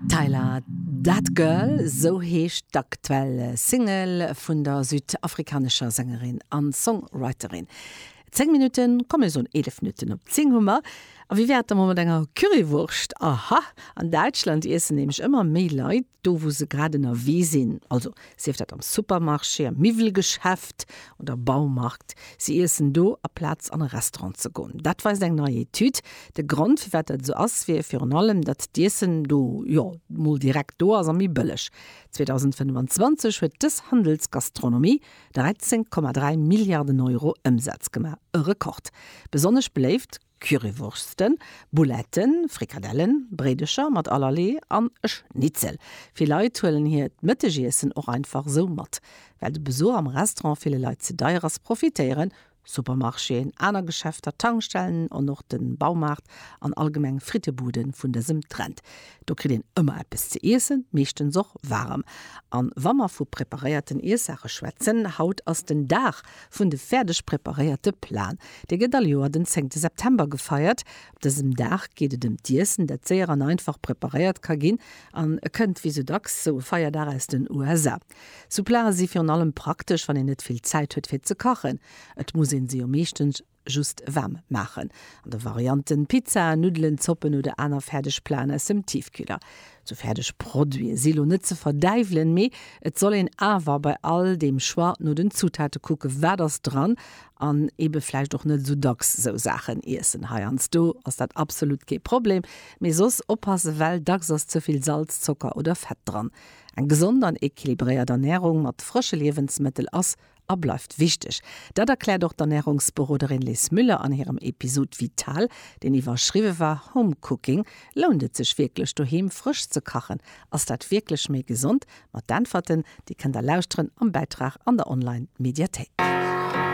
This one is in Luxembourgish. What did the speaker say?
Tyla, That Girl, sou heescht d'aktuell Single vun der südafrikanescher Sängerin a Songwriterin. Zéng Minutten, komm mir soen eelef Minutten op d'Zing hu mer, a wéi wär et da mol mat enger Currywurscht? Aha, an Däitschland iessen nämlech ëmmer méi Leit do, wou se grad ënnerwee sinn. Also, Sief dat am Supermarché, am Miwwelgeschäft oder Baumarkt, si iessen do aplaz an e Restaurant ze goen. Dat weist eng nei Etüd. De Grond, firwat dat esou ass, wier virun allem, datt d'Iessen do, jo, mol direkt do ass a méi bëlleg. 2025 huet dës Handelsgastronomie 13,3 Milliarden Euro Ëmsaz gemaach, e Rekord. Besonnesch beléift Currywursten, Bouletten, Frikadellen, Bréidecher mat allerlee an e Schnitzel. Vill Leit huelen hiert d'Mëttegiessen och einfach esou mat. Well de Besuch am Restaurant ville Leit ze deier ass, profitéieren Supermarchéen, aner Geschäfter, Tankstellen an och de Baumaart an allgemeng Frittebudde vun dësem Trend. Do kritt een ëmmer eppes ze iessen, meeschtens och waarem. A wa mer vu preparéierten Iessaache schwätzen, haut ass den Dag vun de fäerdeg preparéierte Plaen. Dee gëtt all Joer den zéngte September gefeiert. Op dësem Dag geet et ëm d'Iessen, dat séier an einfach preparéiert ka ginn an kënnt, wéi sou dacks, sou e Feierdag aus den USA. Sou Plae si virun allem praktesch, wann een net vill Zäit huet, fir ze kachen. Et muss ee se jo meeschtens. Just waarm maachen an de Varianten Pizza, Nuddelen, Zoppen oder aner fäerdeg Platen aus dem Tiefkühler. Sou fäerdeg Produite si lo net ze verdäiwelen, mee et soll een awer bei all deem Choix no den Zutate kucken, wat ass dran, an ebe vläicht och net sou dacks sou Saachen iessen. Heiansdo ass dat absolut kee Problem, mee soss oppassen, well dacks ass ze vill Salz, Zocker oder Fett dran. Eng gesond an equilibréiert Ernärung mat frësche Liewensmëttel ass a bleift wichteg. Dat erkläert och d'Ernärungsberoderin Liz Müller an hirem Episod Vital, deen iwwerschriwwe war Home Cooking, Lount et sech wierklech doheem frësch ze kachen? Ass dat wierklech méi gesond? Mat d'Äntwerten, déi kënnt der lauschteren am Bäitrag an der Online-Mediathéik.